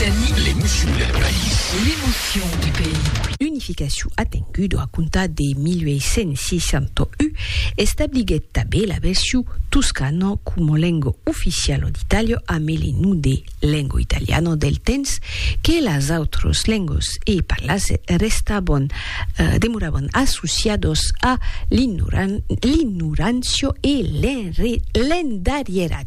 Occitanie. L'emocion del país. L'emocion du pays. Unificacion atenguda a comptar de 1861 establiguèt tanben la version toscana coma lenga oficiala d'Itàlia amé le nom de lenga italiana del temps que las autras lengas e parlas restavan, demoravan associadas a l'ignorancia e l'endarrieratge.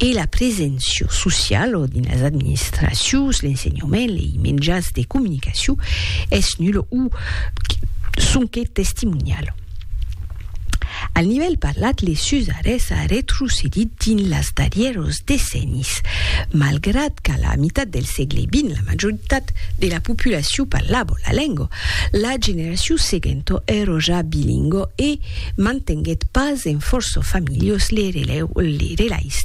e la preséncia sociala dins las administracions, l'ensenhament, lei menjats de comunicacion es nula o sonque testimoniala. Al nivèl parlat, les usaires a retrocedit dins las darrièras decennis, malgrat qu'a la mitat del sègle vint la majoritat de la populacion parlava la lenga, la generacion seguenta èra ja bilingua e, Mantenguèt pas en fòrça familhas le relais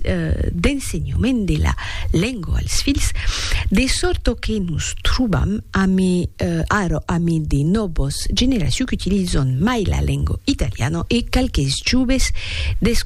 d'ensenhament de la lenga als filhs, de sòrta que nos trobam ara amé de nòvas generacions qu'utilizan mai la lenga italiana e qualques joves